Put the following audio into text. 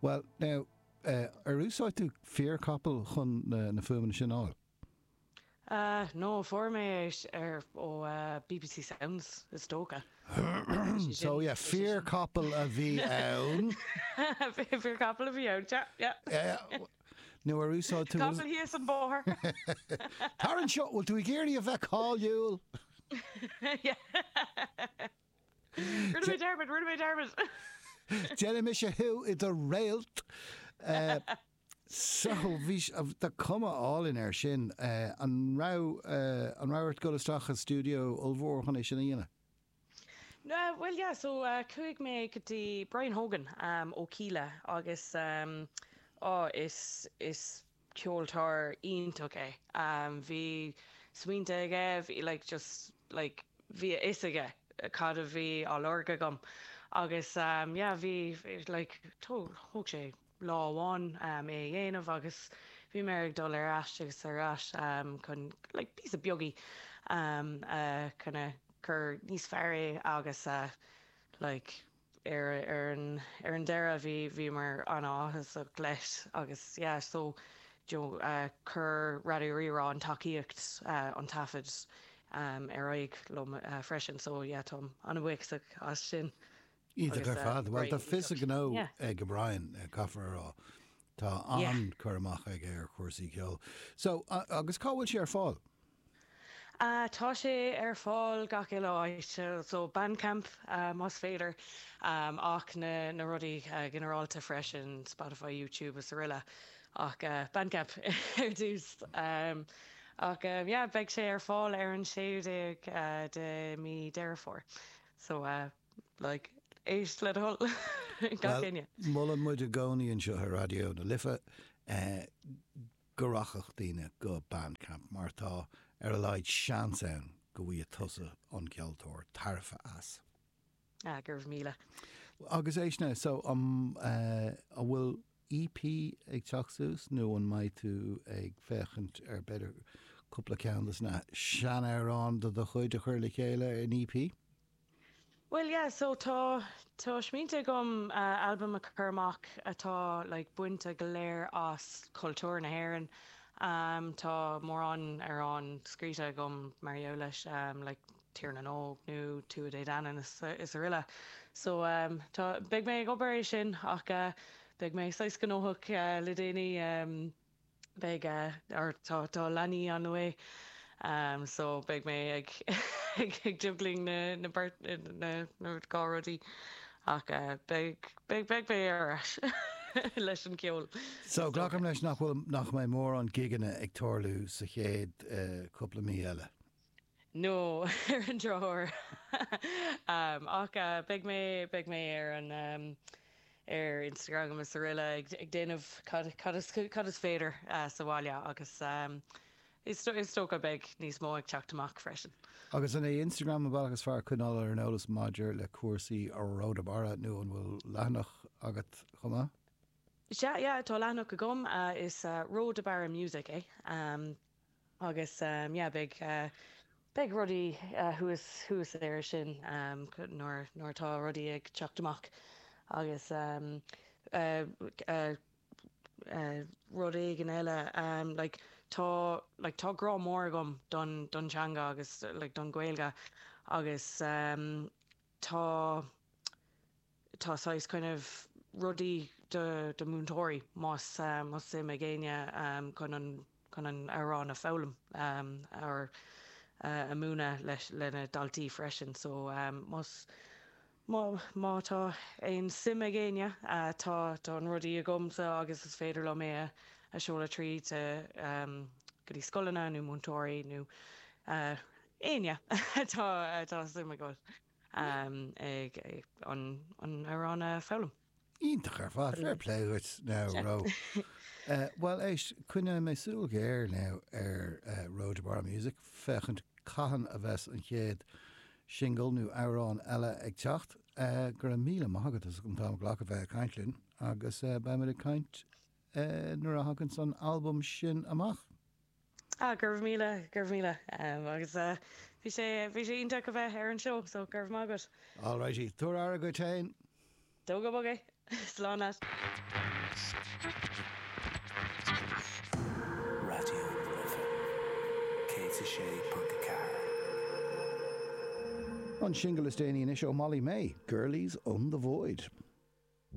Bhuel, now, ar úsáid tú fíorchapall chun na fuaimeanna sin a fháil? Ah, no, fuair mé é ar, ó, bbc Sounds, is dócha. So, yeah, fíorchapall a bhí ann. Fíorchapall a bhí ann, yeah, yeah. Nó ar úsáid tú. Capall thíos an bóthar. Tar anseo, bhfuil tú ag iarraidh a bheith cáiliúil? Yeah. Rinne mé dearmad, rinne mé dearmad! Déanfaidh mise thú i do réalt. So, but, tá cuma álainn air sin. An raibh, an raibh ort dul isteach sa stiúideo ollmhór chun é sin a dhéanamh? Bhuel, yeah, so chuaigh mé go dtí Brian Hogan ó Kíla agus, á, is, is ceoltóir iontach é. Bhí smaointe aige, bhí like just like bhí a fhios aige cad a bhí á lorg agam agus yeah bhí like thóg sé lá amháin é a dhéanamh agus bhí mé ag dul ar ais agus ar ais chun like píosaí beaga a kind of cur níos fearr é agus like ar an deireadh, bhí, bhíomar an-áthasach leis agus yeah, so you know chuir Raidió Rí-Rá an tacaíocht, an taifead ar aghaidh liom freisin so yeah, táim an-bhuíochasach as sin. Iontach ar fad, bhuel tá fios a ghnó ag Brian, caithfear a rá, tá an-chur amach aige ar chúrsaí ceoil. So, agus cá bhfuil sé ar fáil? Tá sé ar fáil gach uile áit, so Bandcamp más féidir ach na rudaí ginearálta freisin, Spotify, YouTube is aroile ach Bandcamp ar dtús. Ach yeah, beidh sé ar fáil ar an 16ú de mí Deireadh Fómhair, so like éist le do thoil gach éinne! Bhuel, molann muid i gcónaí anseo ar Raidió na Life. go rachadh daoine go Bandcamp mar tá ar a laghad seans ann go bhfaighidh tusa an ceoltóir tairbhe as. Ah, go raibh míle. Agus é sin, so an bhfuil EP ag teacht suas nó an mbeidh tú ag féachaint ar b'fhéidir cúpla ceann de na seanamhráin de do chuid a chur le chéile in EP? Bhuel, yeah, so tá, tá smaointe agam albam a chur amach atá like bainte go léir as cultúr na hÉireann. Tá mórán amhrán scríte agam mar gheall leis, like Tír na nÓg nó Tuatha Dé Danann is aroile. So, tá, beidh mé ag obair é sin ach beidh mé saghas gnóthach le déanaí. beidh a, or tá, tá a leanaí on the way, ehm, so beidh mé ag, ag, ag juggling na, na beirt, na, na dhá rudaí ach eh, beidh, beidh, beidh mé ar ais leis an gceol So, is dócha. glacaim leis nach bhfuil, nach mbeidh mórán gigeanna ag tarlú sa chéad eh, cúpla mí eile. nó ar an drochuair. Ach beidh mé, beidh mé ar an, ar Instagram agus aroile ag déanamh cad, cad is, cad is féidir sa bhaile agus is, is dócha beidh níos mó ag teacht amach freisin. Agus an é Instagram an bealach is fearr coinneáil ar an eolas maidir le cúrsaí Ró de Barra nó an bhfuil leathanach agat chomh maith? Sea, yeah, tá leathanach agam, is Ró de Barra Music é. Agus beidh rudaí thuas, thuas air sin nuair, nuair atá rudaí ag teacht amach agus rud éigin eile, like, tá, like, tá grá mór agam don, don teanga agus, like, don Ghaeilge agus tá, tá saghas kind of rudaí do do mhúinteoirí más más suim ag éinne chun an chun an amhrán a foghlaim or a múineadh leis le na daltaí freisin so más má má tá aon suim ag éinne tá tá an rudaí agamsa agus is féidir liom é a seoladh tríd go dtí scoileanna nó múinteoirí nó éinne atá atá suim acu. ag an amhrán a foghlaim. Iontach ar fad, fair play dhuit now Ró. Bhuel éist, coinneoidh mé súil ghéar now ar Ró de Barra Music féachaint cathain a bheas an chéad singil nó amhrán eile ag teacht. Go raibh míle maith agat as an t-am a ghlacadh bheith ag caint linn agus beidh muid ag caint nuair a thaganns an t-albam sin amach. Ah, go raibh míle, go raibh míle. Em, agus eh, bhí sé, bhí sé iontach a bheith ar an seó, so go raibh maith agat. All righty, tabhair aire duit féin. Tóg bog é. Slán leat. An singil is déanaí anois ó Molly-Mae, Girlies on the Void.